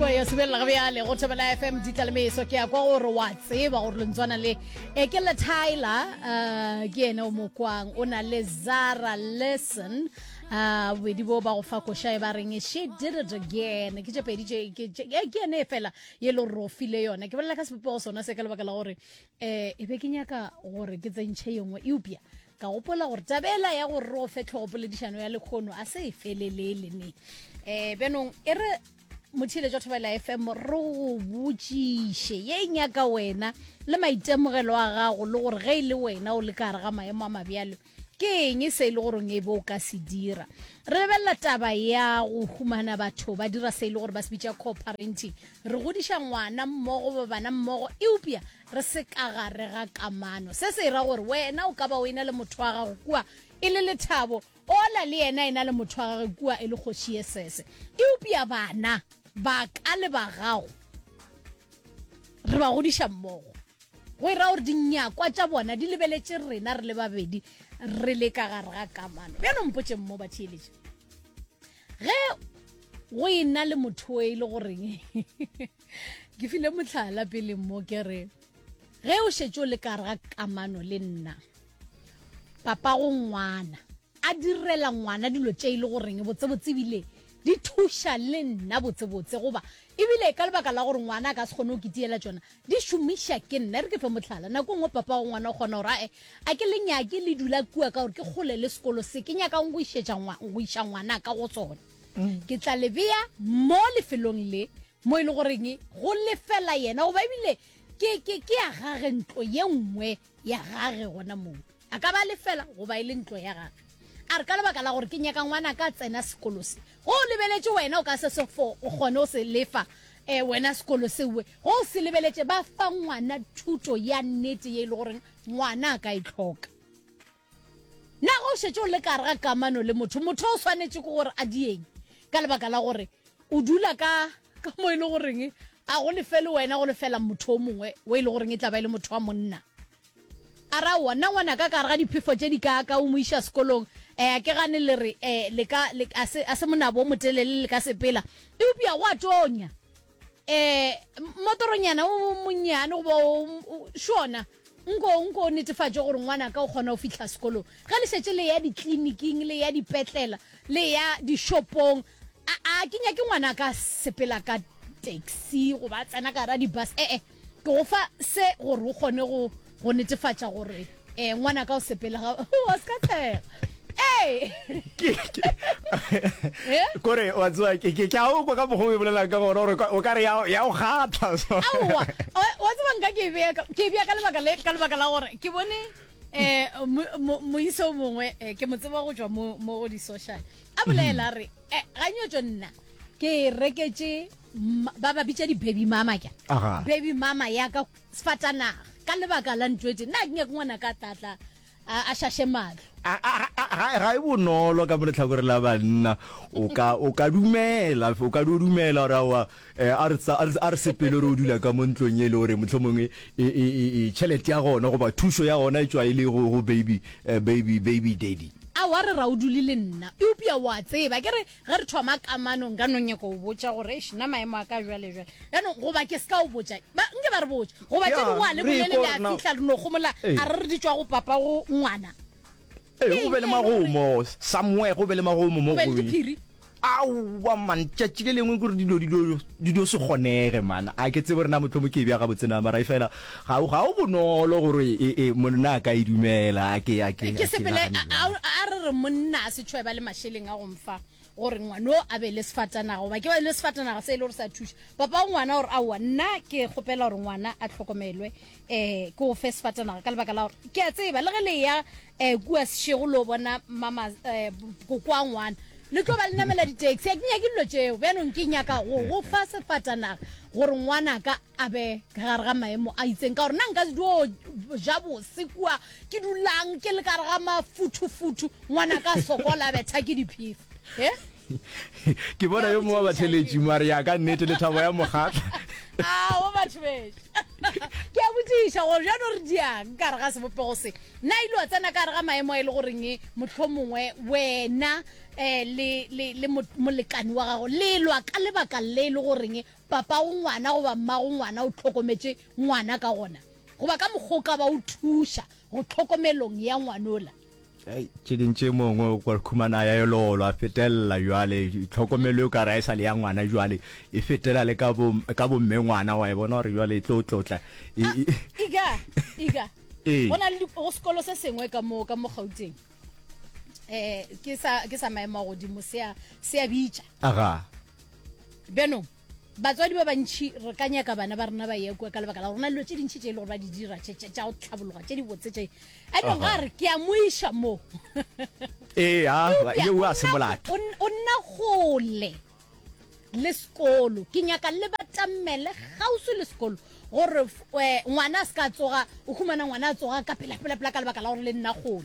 ya sebelela go bjale go thobela fm di tlalemeso ke ya kwa gore wa tseba gore lentswana le e ke le tyler uh, ke ene o mokwang o na le zara lesson uh, bobedi bo ba go fa koša e ba reng she did it again ke tšepedi ke ene e fela ye le gore o file yone ke bolela ka sebopego sona se ka lebaka la gore um e be ke nyaka gore ke tsentšhe yengwe eupša ka gopola gore tabela ya gore re o fe tlhogopoledišano ya lekgono a se e felelele ne um bjanong e re mothile jwa thobela fm re go botšiše ye e nyaka wena le maitemogelo a gago le gore ge e le wena o le ka gare ga maemo a mabjalo ke eng e se e le goreng e be o ka se dira re lebelela taba ya go humana batho ba dira se e le gore ba se bitša coparenting re godiša ngwana mmogo ba bana mmogo eupša re se ka gare ga kamano se se e ra gore wena o ka ba o e na le motho wa gago kua e le lethabo Ola le yena e na le motho wa gage kua e le kgoši ye sese. Eupša bana ba ka le ba gago re ba godiša mmogo, go e raya gore dinyakwa tša bona di lebeletše rena re le babedi re le ka gare ga kamano. Bjalo mpotšeng mo, batheeletši, ge go e na le motho o e le goreng ke file mohlala pele mo ke re, Ge o šetše o le ka gare ga kamano le nna, papa go ngwana a direla ngwana dilo tše e le goreng botsebotse ebile di thuša le nna botsebotse goba ebile ka lebaka la gore ngwana a ka se kgone go kitiela tsona di šomiša ke nna e re ke fe motlhala nako e nngwe papa go ngwana o kgona gore ae a ke le nyake le dula kua ka gore ke kgole le sekolo se ke nyakang go iša ngwana ka go tsone mm. ke tla lebeya mo lefelong le mo e le goreng go lefela yena goba ebile ke ya gage ntlo ye nngwe ya gage gona moo a ka ba lefela goba e le ntlo ya gage a re ka lebaka la gore ke nyaka ngwana ka tsena sekolo se go o lebeletše wena o ka se sefo o kgone o se lefa um wena sekolo sewe go o se lebeletše ba fa ngwana thuto ya nnete ye e le goreng ngwana a ka e tlhoka Nago o šetše o le ka gare ga kamano le motho, motho o swanetše ke gore a dieng ka lebaka la gore o dula ka ka mo e le goreng a go lefele wena go lefela motho o mongwe o e le goreng e tla ba e le motho wa monna a ra wa nna ngwana ka gare ga diphefo tše di ka ka o mo iša sekolong um ke gane le re um a se monabo o motelele le ka sepela eupša go a tonya eh motoronyana o monnyane goba šona nko nko netefatše gore ngwana ka o kgona go fitlha sekolong ge le šetse le ya ditleliniking le ya dipetlela le ya dishopong a ke nyake ngwana ka sepela ka taxi goba tsena ka ra di-bus ee eh, eh. ke go fa se gore o kgone go go netefatša gore um ngwana ka o sepele ga wa se ka tlega kore wa tsewa ke ke a o kwa ka mokgwa o e bolelang ka gore gore o ka re ya o kgatlha so aowa wa tseba nka ke bea ke bea ka lebaka le ka lebaka la gore ke bone eh moiso mongwe eh, ke mo tseba go tswa mo mo go di social a bolela re eh, ga nyotso nna ke reketse ba ba bitša di-baby mama ke baby mama ya ka sefatanaga ka lebaka la ntwetse nna ke nyake ngwana ka tlatla a šaše matlho ga e bonolo ka mo letlhakore la banna o ka dumela o ka di o dumela gore awa eh, a re sepele re o dula ka mo ntlong e le gore motlho mongwe tšhelete ya gona goba thušo ya gona e tswa e le go baby eh, baby baby daddy a wa re ra o dule le nna eupša wa tseba ke re Ge re thoma kamano, nka no nyaka o botša gore, eish, nna maemo a ka jwale jwale. Yanong, goba ke ska o botša, ba, nke ba re botša. Goba tše dingwe a le bolele le a fihla re no gomola, a re re di tšwa go papa go ngwana. Ee, go be le magomo, somewhere go be le magomo mo go ye. Aowa man, tšatši le lengwe kore dilo di do se kgonege man. A ke tsebe gore na mohlomong ke e bja gabotse na, mara efela. Ga, ga go bonolo gore e, e, monna a ka e dumela. A ke, a ke, Ke a ke sepele, nagane a, a, bjalo. a re re monna a se tšhwe ba le mašeleng a go mfa gore ngwano a be le sefatanaga, goba ke ba le sefatanaga se e le gore sa thuša papa wa ngwana, gore aowa, nna ke kgopela gore ngwana a hlokomelwe, um ke go fe sefatanaga ka lebaka la gore ke a tseba le ge le ya um kua sešego lo bona mama, um koko wa ngwana, le tlo ba le namela di-taxi. A ke nyake dilo tšeo, bjanong ke nyaka go go fa sefatanaga gore ngwanaka a be ka gare ga maemo a itseng ka gore na nka dio ja bose kua ke dulang ke le kare ga mafuthufuthu ngwana ka sokola a betha ke diphefa e ke bona yo mongwe wa batheletši mare ya ka nnete lethabo ya mokgatla ao batho beso ke a botsiša gore jano re diang ka gare ga sebopego se na ile wa tsena ka gare ga maemo a e le goreng motlho mongwe wena um le molekane wa gago le lwa ka lebaka le e le goreng papago ngwana goba mmago ngwana o hlokometše ngwana ka gona goba ka mokgwa o ka ba o thuša go tlhokomelong ya ngwanola. Hei, tše ding tše mongwe o ka khumana ya elolo a fetelela jwale tlhokomelo e ka re a e sa le ya ngwana jwale e fetela le ka bo ka bomme ngwana wa e bona gore jwale e tlo tlotla e- e- Iga, iga. Ee. Go na le di- go sekolo se sengwe ka mo ka mo Gauteng. Eh ke sa ke sa maemo a godimo se a se a bitša. aga bjanong batswadi ba bantšhi re ka nyaka bana ba rena ba ye kua ka lebaka la gorena dilo tše dintšhi tše e le gore ba di dira tša go tlhabologa tše di botse tše anong ga re ke a moiša moo ee a se molato o nna gole le sekolo ke nyaka le batamele gausi le sekolo gore eh, ngwana a se ka tsoga o humana ngwana a tsoga ka pelapelapela ka lebaka la gore le nna gole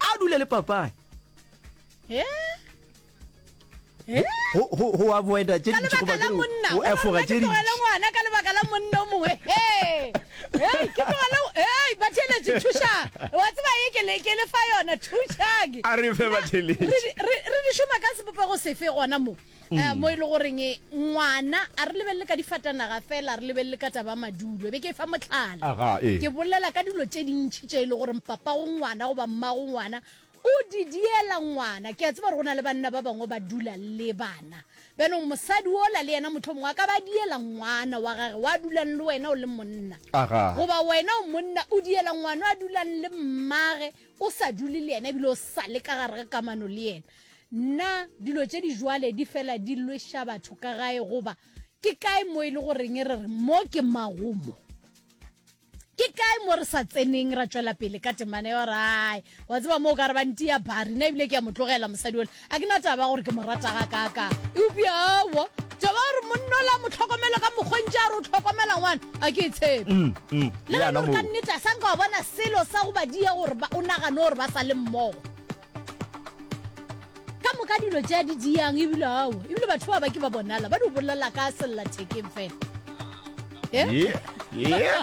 a dule le papae go avoida tše dintši goba ke go efoga tše dintši ngwana ka lebaka la monna o mongwe hey hey ke tlogela hey batheletši thuša wa tseba ye ke le ke le fa yona thušang a re fe batheletši re di šoma ka sebopego sefe gona mo um mo e le goreng ngwana a re lebelele ka difatanaga fela re lebelele ka taba madulo e be ke e fa motlhala ke bolela ka dilo tše dintšhi tše e le goreng papa go ngwana goba mmago ngwana o di diela ngwana ke a tseba gore go na le banna ba bangwe ba dula le bana bjanong mosadi ola le yena motlho mongwe a ka ba diela ngwana wa gage wa dulang le wena o le monna goba wena o monna o diela ngwana a dulang le mmage o sa dule le yena ebile o sa le ka gare ga kamano le yena Nna dilo tše di jwale di fela di lweša batho ka gae goba ke kae mo e le goreng re re mo ke magomo ke kae mo re sa tseneng ra tšwela pele ka temana yo rae wa tseba mo o ka re ba nti ya bari nna ebile ke ya mo tlogela mosadi ole a ke na taba gore ke mo rata ga kaka eupša aowa taba gore monna ola mo tlhokomelo ka mokgontši a re o tlhokomela ngwana a ke e tshepe mm, mm, le gane gore ka nnete a sanka wa bona selo sa go ba dia gore o nagane gore ba sa le mmogo ka moka dilo tša di diyang ebile ao ebile batho ba ba ke ba bonala ba di bolela ka sellathekeng fela Yeah, yeah.